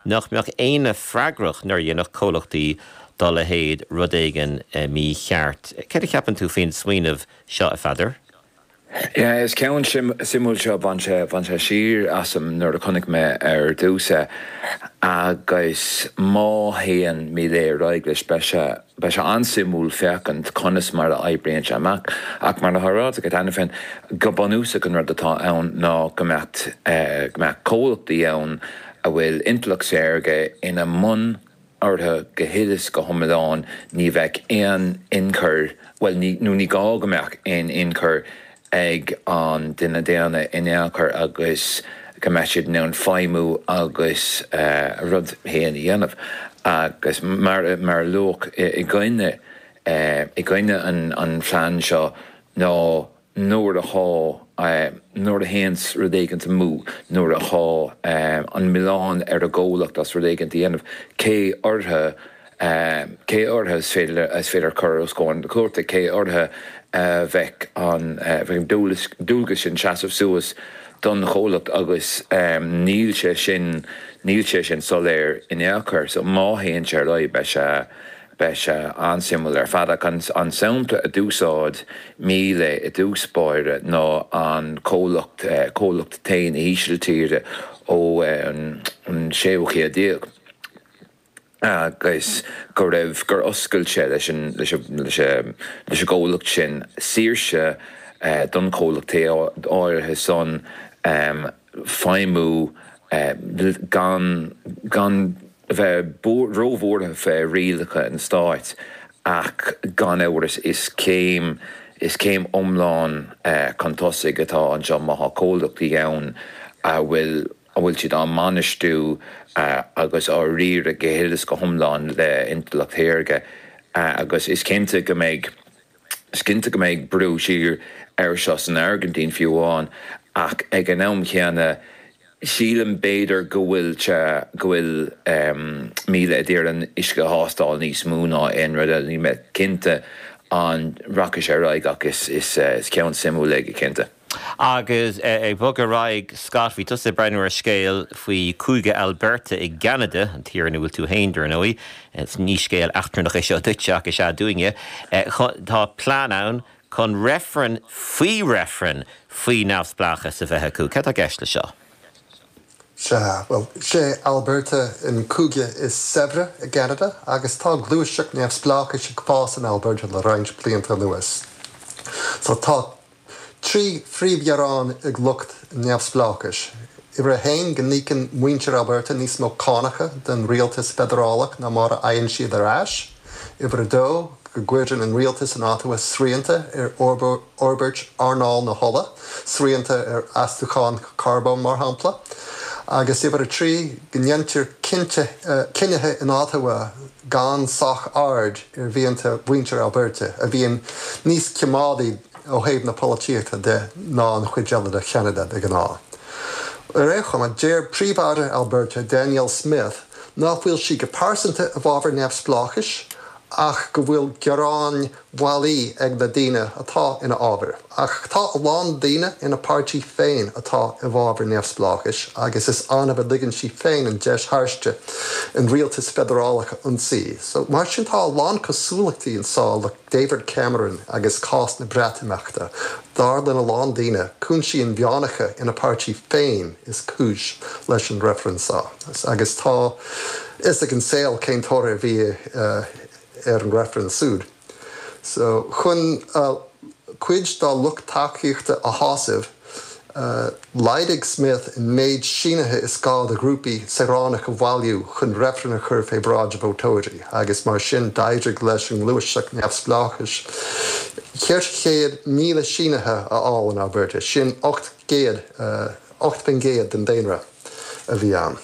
nach mbeadh éinne freagrach nuair a dhéanfadh comhlachtaí dá leithéid rud éigin mícheart. Céard a cheapann tú faoin smaoineamh seo, a Pheadair? Is ceann suimiúil seo, bhain sé siar asam nuair a chonaic mé ar dtús é, agus má théann Milei ar aghaidh leis, beidh sé an-suimiúil féachaint conas mar a oibríonn sé amach, ach mar atá ráite agat cheana féin, go bunúsach an rud atá ann ná go mbeadh comhlachtaí ann, a bhfuil intleacht shaorga ina mbun orthu go huile is go hiomlán, ní bheadh aon inchur, bhuel, nó ní gá go mbeadh aon inchur ag an duine daonna in aon chor agus go mbeadh siad in ann feidhmiú agus a rud féin a dhéanamh. Agus mar a luadh i gcoinne, i gcoinne an phlean seo ná nuair atá, nuair a théanns rud éigin amú, nuair atá an milleán ar an gcomhlacht as rud éigin a dhéanamh, cé orthu, cé orthu is féidir, is féidir a chur os comhair na cúirte, cé orthu a bheadh an, a bheadh an dualgas sin seasamh suas don chomhlacht agus níl sé sin, níl sé sin soiléir in ao' chor. So má théann sé ar aghaidh beidh sé, Beidh sé an-suimiúil ar fad, ach an sampla a d'úsáid Milei i dtús báire ná an comhlacht, comhlacht tae na hÍsiltíre ón séú haois déag, agus go raibh, gur oscail sé leis an, leis an, leis an, leis an gcomhlacht sin saoirse don chomhlacht tae áirithe san, feidhmiú gan, gan a bheith róbhuartha fé rialacha an stáit ach gan amhras is céim, is céim iomlán chun tosaigh atá anseo má tá comhlachtaí ann a bhfuil, a bhfuil siad á mbainistiú agus á riaradh go huile is go hiomlán le intleacht shaorga agus is cinnte go mbeidh Is cinnte go mbeidh brú siar air seo san Airgintín fiú amháin, ach ag an am chéanna sílim b'fhéidir go bhfuil sé, go bhfuil Milei ag iarraidh an t-uisce a thástáil níos mó ná aon rud eile. Níl mé cinnte an rachaidh sé ar aghaidh ach is, is ceann suimiúil é go cinnte. Agus ag bogadh ar aghaidh, Scott, bhí tusa ag breathnú ar scéal faoi Chúige Alberta i gCeanada, an tír ina bhfuil tú féin, dar ndóigh. Ní scéal eachtrannach é seo duitse, ach is ea dúinne. Tá plean ann chun reifreann faoi reifreann faoi neamhspleáchas a bheith acu. Céard tá i gceist leis seo? Sea, bhuel, is é Alberta an cúige is saibhre i gCeanada agus tá gluaiseacht neamhspleáchais ag fás in Alberta le roinnt blianta anuas. So tá Trí phríomhghearán ag lucht neamhspleáchais, uimhir a haon go n-íocann muintir Alberta níos mó cánacha don rialtas feidearálach ná mar a fhaigheann siad ar ais, uimhir a dó go gcuireann an rialtas in Ottawa srianta ar fhorbairt earnáil na hola, srianta ar astúcháin carbóin mar shampla, agus uimhir a trí go ndeintear cinnithe in Ottawa, gan sách aird ar mhianta mhuintir Alberta, a bhíonn níos coimeádaí ó thaobh na polaitíochta de ná an chuid eile de Cheanada de ghnáth. Ar aon chuma, deir Príomh-Aire Alberta, Danielle Smith, nach bhfuil sí go pearsanta i bhfabhar neamhspleáchais ach go bhfuil gearáin bailí ag na daoine atá ina fhábhar. Ach tá a lán daoine ina páirtí féin atá i bhfábhar neamhspleáchais agus is annamh a ligeann sí féin an deis thairsti an rialtas feidearálach a ionsaí. So, mar sin tá a lán cosúlachtaí anseo le David Cameron agus cás na Breatimeachta. Dar lena lán daoine, cúinsí inmheánacha ina páirtí féin is cúis leis an reifreann seo. Agus tá fhios ag an saol cén toradh a bhí ar an reifreann súd so chun cuid dá lucht tacaíochta a shásamh, laghdaigh Smith an méid sínithe is gá do ghrúpaí saoránach a bhailiú chun reifreann a chur fé bhráid vótóirí agus mar sin d'éirigh leis an nGluaiseacht Neamhspleáchais cheithre chéad míle sínithe a fháil in Alberta, sin ocht gcéad, 8 faoin gcéad, den daonra a bhí ann.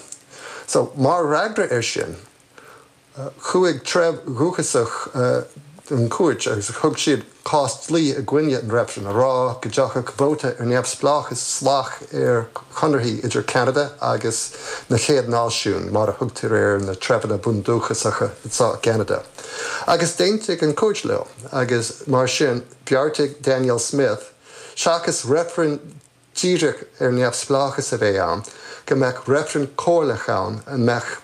So, mar fhreagra ar sin. Chuaigh treibh dhúchasach chun na cúirte agus thug siad cás dlí i gcoinne an reifrinn, a rá go dtiocfadh vóta ar neamhspleáchas salach ar chonarthaí idir Ceanada agus na Chéad Náisiúin, mar a thugtar ar na treibheanna bundúchasacha atá i gCeanada. Agus d'aontaigh an chúirt leo, agus mar sin, bheartaigh Danielle Smith, seachas reifreann díreach ar neamhspleáchas a bheith ann, go mbeadh reifreann comhairleach ann a mbeadh.